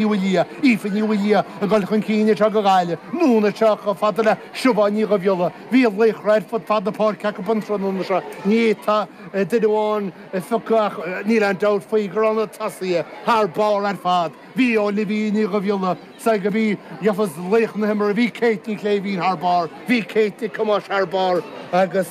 Ní Mhaoildhia, Aoife Ní Mhaoildhia ag dul chun cinn anseo go Gaillimh, anonn anseo chomh fada le Siobhán Ní Dhubhghiolla. Bhí laochra ar fud fad na páirce acu an tráthnóna seo. Ní fhéadfá duine amháin a phiocadh ach níl aon dabht faoi go raibh na tosaithe thar barr ar fad. Bhí Olivia Ní Dhubhghiolla seans gurb í a gheofas laoch na himeartha. Bhí Kate Ní Shléibhín thar barr. Bhí Kate Nic Thomáis thar barr agus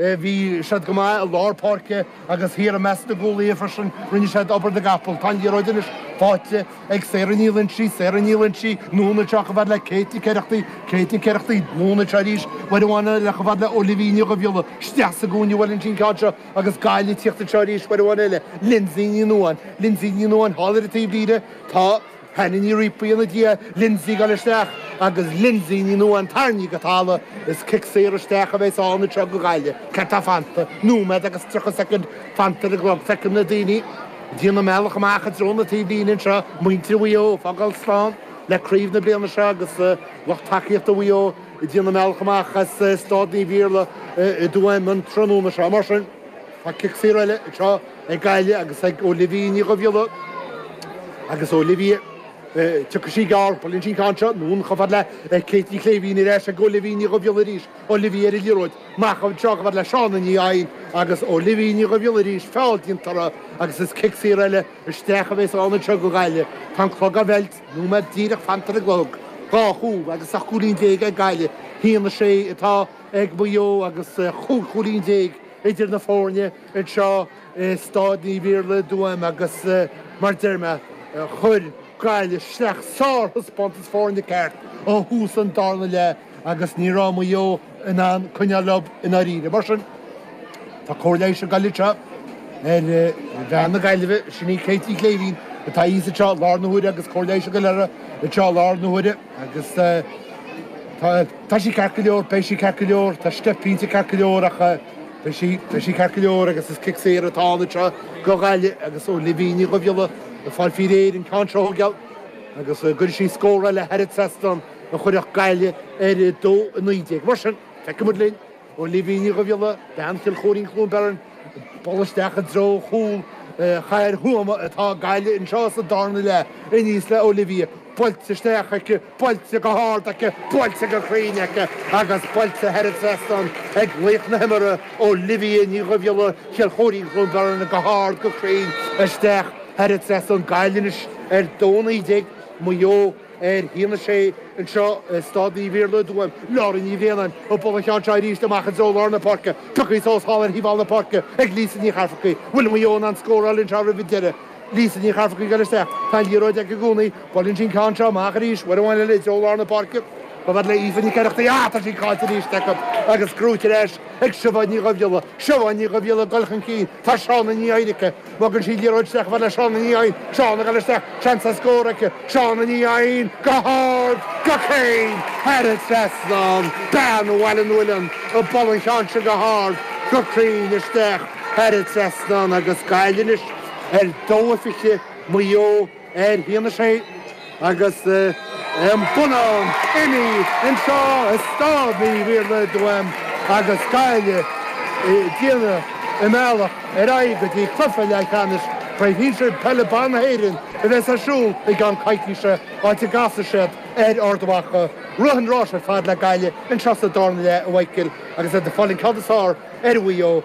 bhí siad go maith i lár páirce. Agus thiar i measc na gcúlaithe freisin, rinne siad obair na gcapall. Tá an liathróid anois faighte ag Sarah Ní Loinsigh, Sarah Ní Loinsigh, anonn anseo chomh fad le Kate Nic Oireachtaigh, Kate Nic Oireachtaigh, anonn anseo arís, uair amháin eile chomh fad le Olivia Ní Dhubhghiolla, isteach sa gcúinne a bhuaileann sí an ceann seo agus Gaillimh ag tíocht anseo arís uair amháin eile, Lindsay Ní Nuadháin, Lindsay Ní Nuadháin thall ar an taobhlíne, tá. Hannah Ní Rípuigh ina diaidh, Lindsay ag dul isteach agus Lindsay Ní Nuadháin tarraingthe go talamh is cic saor isteach a bheas ann anseo go Gaillimh. Céard atá fanta? Nóiméad agus tríocha soicind fanta ar an gclog Feicim na daoine ag déanamh a mbealach amach i dtreo na taobhlíne anseo, muintir Mhaigh Eo ag fágáil slán le craobh na bliana seo agus lucht tacaíochta Mhaigh Eo ag déanamh a mbealach amach as Stáid Naomh Iarlaith i dTuaim an tráthnóna seo. Mar sin tá cic saor eile ag trá. ag Gaillimh agus ag Olivia Ní Dhubhghiolla agus Olivia tiocfaidh sí gearr buaileann sí an ceann seo anonn chomh fada le Kate Ní Shléibhín ar ais ag Olivia Ní Dhubhghiolla arís Olivia ar an liathróid amach anseo chomh fada le Shauna Ní Eidhin agus Olivia Ní Dhubhghiolla arís feall déanta uirthi agus is cic saor eile isteach a bheas ann anseo go Gaillimh tá an clog á mheilt nóiméad díreach fanta ar an gclog dhá chúl agus ocht gcúilín déag ag Gaillimh haon a sé atá ag Maigh Eo agus chúig chúilín déag idir na foirne. anseo i Stáid Naomh Iarlaith i dTuaim agus mar deir mé, chuir Gaillimh isteach sár-thaispeántas foirne ceart ó thús an darna leath agus ní raibh Maigh Eo in ann coinneáil leo i ndáiríre. Mar sin, tá cóir leighis ag dul anseo ar bhean na Gaillimhe, sin í Kate Ní Shléibhín atá thíos anseo i láthair na huaire agus cóir leighis ag dul uirthi anseo i láthair na huaire agus tá sí ceart go leor, beidh sí ceart go leor, tá sí cinnte ceart go leor ach. Beidh sí, beidh sí ceart go leor agus is cic saor atá ann anseo go Gaillimh agus Olivia Ní Dhubhghiolla ag fáil faoi réir an ceann seo geall agus gcuirfidh sí scór eile thar an trasnán a chuirfeadh Gaillimh ar 2:19. Mar sin, feicfidh muid linn Olivia Ní Dhubhghiolla, bean Chill Chóirín-Cluain Bheirn, dul isteach i dtreo chúl Chathair Thuama atá Gaillimh anseo sa darna leath aníos le Olivia, buailte isteach aici, Buailte go hard aici, buailte go cruinn aici agus buailte thar an trasnán ag laoch na himeartha, Olivia Ní Dhubhghiolla, Chill Chóirín-Cluain Bheirn, go hard, go cruinn isteach thar an trasnán, Gaillimh anois ar 2:19, Maigh Eo, ar 1:6 anseo i Stáid Naomh Iarlaith i dTuaim, Laura Ní Bhraonáin, ag bualadh an cheann seo arís amach i dtreo lár na páirce, pioctha suas thall ar thaobh thall na páirce ag Lisa Ní Chafarcaigh, bhfuil Maigh Eo in ann scóráil anseo roimh an deireadh? Lisa Ní Charfracaigh, LS, Tá an liathróid aici i gcónaí. Buaileann sí an ceann seo amach arís, uair amháin eile i dtreo lár na páirce. Ba mhaith le Aoife Nic Oireachtaigh í a fháil, tá sí cáillte arís acu agus curtha ar ais ag Siobhán Ní Dhuibhghiolla. Siobhán Ní Dhuibhghiolla ag dul chun cinn. Tá Shauna Ní Eidhin aici. Bogann sí an liathróid isteach i bhfad le Shauna Ní Eidhin. Shauna, LS, Seans ar scór aici. Shauna Ní Eidhin, go hard, go cruinn! Thar an trasnán Bean Bhaile an Mhuilinn ag bualadh an cheann seo go hard, go cruinn isteach. Thar an trasnán agus Gaillimh anois. a 22 Maigh Eo a 10 Aon 16 agus an bua ann inniu anseo i Stáid an Iarlaithe i dTuaim agus Gaillimh ag déanamh a mbealach ar aghaidh go dtí cluiche leathcheannais chraobh shinsir peile ban na hÉireann a bheas ar siúl i gceann coicíse, áit a gcasfaidh siad ar Ard Mhacha. Rith an rása ar fad le Gaillimh anseo sa dara leath a Mhíchíl agus iad ag fáil an ceann is fearr ar Mhaigh Eo.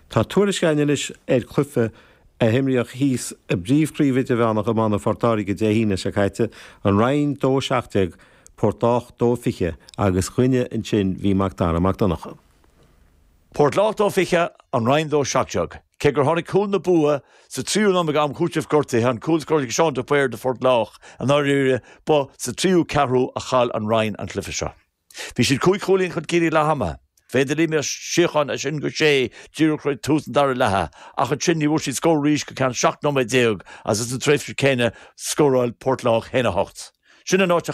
Tá tuairisc againn anois ar chluiche a himríodh thíos i bPríomh-Chraobh Idirmheánach Iomána Phort Láirge Dé hAoine seo caite, An Rinn 2 17 Port Lách 2 20, agus dúinne ansin bhí Mac Dara Mac Donncha. Port Lách 2 20, An Rinn 2 17. Cé gur tháinig cúl an bhua sa tríú nóiméad d'am cúitimh gortaithe, an cúl a scóráil Seán de Paor do Phort Lách i ndáiríre, ba sa tríú ceathrú a chaill An Rinn an cluiche seo. Bhí siad cúig chúilín chun cinn ag leath ama. B'fhéidir d'imigh sé chun as sin go sé díreach roimh tús an dara leatha ach ansin ní bhfuair siad scór arís go ceann 17 nóiméad agus sa tréimhse céanna scóráil Port Lách féin 8. Sin an áit a